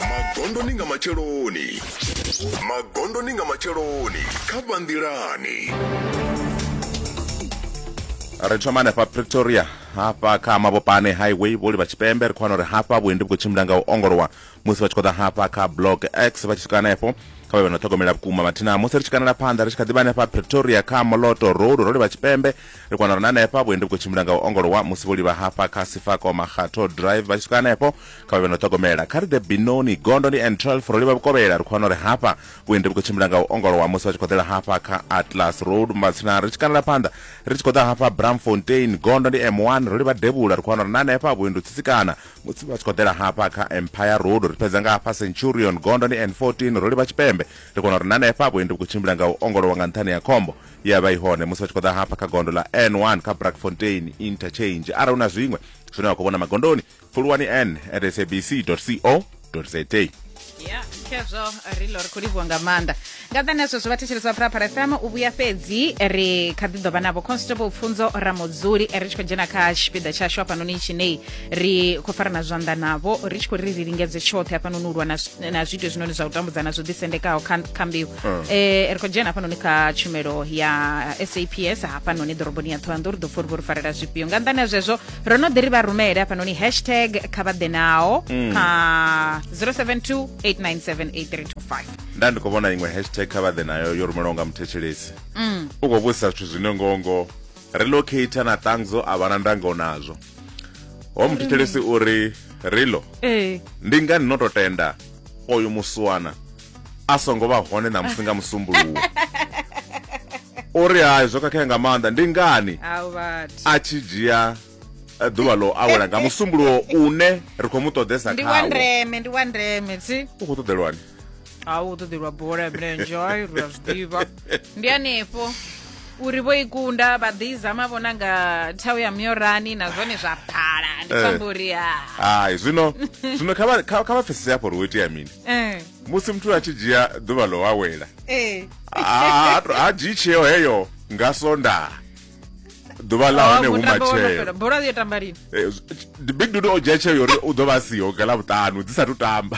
magondoni nga matsheloni magondoni nga matsheloni kha vhanḓilani ri thoma hanefha pretoria hafha kha mabopane highway vholi vha tshipembe ri khou wana uri hafha vhuendi vhu khou tshimbila nga u ongolowa musi vha tshi khou ḓa hafha kha block x vha tshi swika hanefho kha vha vhe na ṱhogomela vhukuma mathina musi ri tshi kanela phanḓa ri tshi kha ḓivha hanefha pretoria kha moloto road ro livha tshipembe Ri kona uri na hanefha vhuendi vhu khou tshimbila nga u ongolowa musi vho livha hafha kha Sifako Makgatho Drive vha tshi swika hanefho kha vha vhe no ṱhogomela kha ri ḓe binoni gondo ndi and 12 ro livha vhukovhela ri khou wana uri hafha vhuendi vhu khou tshimbila nga u ongolowa musi vha tshi khou ḓela hafha kha Atlas Road Mbatsina ri tshi kanela phanḓa ri tshi khou ḓa hafha Bramfontein gondo ndi M1 ro livha Devhula ri khou wana uri na hanefha vhuendi u tsitsikana musi vha tshi khou ḓela hafha kha Empire Road ri fhedza nga hafha Centurion gondo ndi N14 ro livha Tshipembe ri kona uri na hanefha vhuendi vhu khou tshimbila nga u ongolowa nga nṱhani ya khombo ye ya vha i hone musi vha tshi khou ḓa hafha kha gondo ḽa n1 kha brackfontein interchange arali hu na zwiṅwe zwine wa khou vhona magondoni pfuluwani n at sabc co za ya khezwo ri lo ri khou livhuwa nga maanḓa nga ḓani ha zwezwo vhathetshelesi vha phuraphara fm u vhuya fhedzi ri kha ḓi ḓovha navho constable pfunzo ramudzuli ri tshi khou dzhena kha tshipiḓa tshashu hafhanoni tshinei ri khou farana zwanḓa navho ri tshi khou ri ri lingedze tshoṱhe hafhanoni u lwa na zwiito zwinoni zwa u tambudzana zwo ḓisendekaho kha mbeu eh, ri khou dzhena hafhanoni kha tshumelo ya saps hafhanoni ḓoroboni ya ṱhohoyanḓou ri ḓo pfa uri vho ri farela zwifhio nga nḓani ha zwezwo ro no ḓi ri vha rumele hafhanoni hashtag kha vha ḓe nao kha 072 897 8325 nda ndi khou vhona iṅwe hashtag kha vhaḓe nayo yo rumelwaho nga muthetshelesi u khou vhudzisa zwithu zwine ngongo relocate na tangzo a vha na ndango nazwo ho muthetshelesi uri rilo ee ndi ngani no to tenda oyo muswana a songo vha hone na musi nga musumbuluwo o ri hai zwo khakhea nga maanḓa ndi ngani a tshi dzhia eh, ḓuvha ḽo awela nga musumbuluwo une ri khou mu ṱoḓesa khawo u khou ṱoḓelwani a u ṱoḓelwa bola ya milenzhe ai ri a zwi ḓivha ndi hanefho uri vho i kunda vha ḓi zama vhona nga thau ya myorani na zwone zwa phala ndi Eh. pfamba uri ha hayi zwino zwino kha vha- kha kha vha pfesese hafho uri wo itea mini Eh, musi muthu a tshi dzhia ḓuvha ḽo awela eh. ha- ha to- ha dzhii tsheo heyo nga sonda ḓuvha ḽa hone Wa hu mutambo wo no fhela. matshelo bola yo tamba lini Eh, z- big dude o dzhia tsheo yori u ḓo vha a siho nga ḽavhuṱanu dzi sathu tamba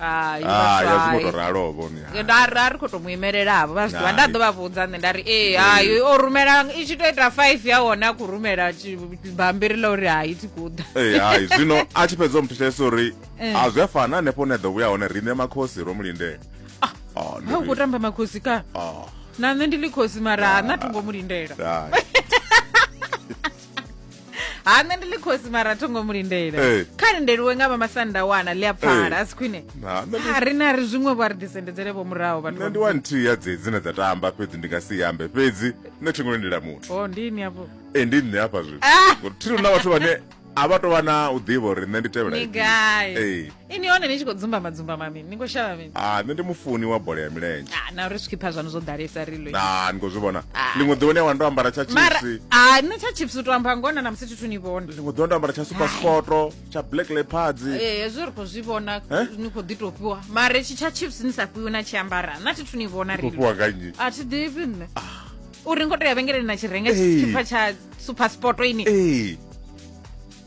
hai ah, ya zwi ngo to ralo vhone nda ra ri kho to muimelela vho vha zwi nda ḓo vha vhudza nṋe nda ri ee hai o rumela i tshi to ita 5 ya hone a khou rumela bambiri ḽa uri hai thi kuḓa ee hai zwino a tshi fhedza u muthetshelesa uri eh. a zwi a fana hanefho hune a ḓo vhuya hone riṋe makhosi ro mu lindela ah, ah, ha u khou tamba makhosi ka na nṋe ndi ḽi khosi mara ha na thongo mu lindela ha nṋe ndi ḽi khosi mara tho ngo mu lindela Eh. kha lindeliwe nga vha masanda wana ḽi a pfala Eh. a si khwine Ha, nṋe ndi- ha ri na ri zwiṅwe vho a ri ḓisendedzele vho muraho vhathu nṋe vha ndi wa nthihi ya dzedzi dzine dza tamba fhedzi ndi nga si yambe fhedzi nṋe thi ngo lindela muthu o ndini afho e ndi nṋe hafha zwino Ah! Ngori thiri na vhathu vhane a vha tou vha na u ḓivha uri nṋe ndi tevhela Ni ifhio. gai? Ee. ini hone ni tshi khou dzumbama dzumbama mini ni khou shavha mini ah nṋe ndi mufuni wa bola ya milenzhe ah na uri zwi khipha zwanu zwo ḓalesa ri lo ah ni khou zwi vhona ah. ḽiṅwe ḓuvha ni a wana ndo ambara tsha chipsi ah nṋe tsha chipsi u to amba ngona na musi thithu ni vhona ḽiṅwe ḓuvha ndo ambara tsha super sport tsha black leopards eh, eh hezwo ri khou zwi vhona eh? ni khou ḓi tou fhiwa mara tshi tsha chipsi ni sa fhiwi na tshi ambara na thithu ni vhona ri fhiwa nga nnyi a thi ḓivhi nṋe ah. uri ngo to ya vhengeleni na tshi renga tshipha tsha super sport ini eh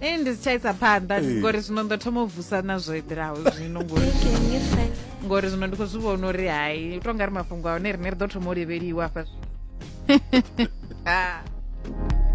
ee ndi si tsha isa phanḓa eh. ngori zwino ndo thoma u vusa na zwo eḓelaho zwino ngori ngori zwino ndi khou zwi vhona uri hai u to nga ri mafhungo a hone rine ri ḓo thoma u levheliwa hafha ah.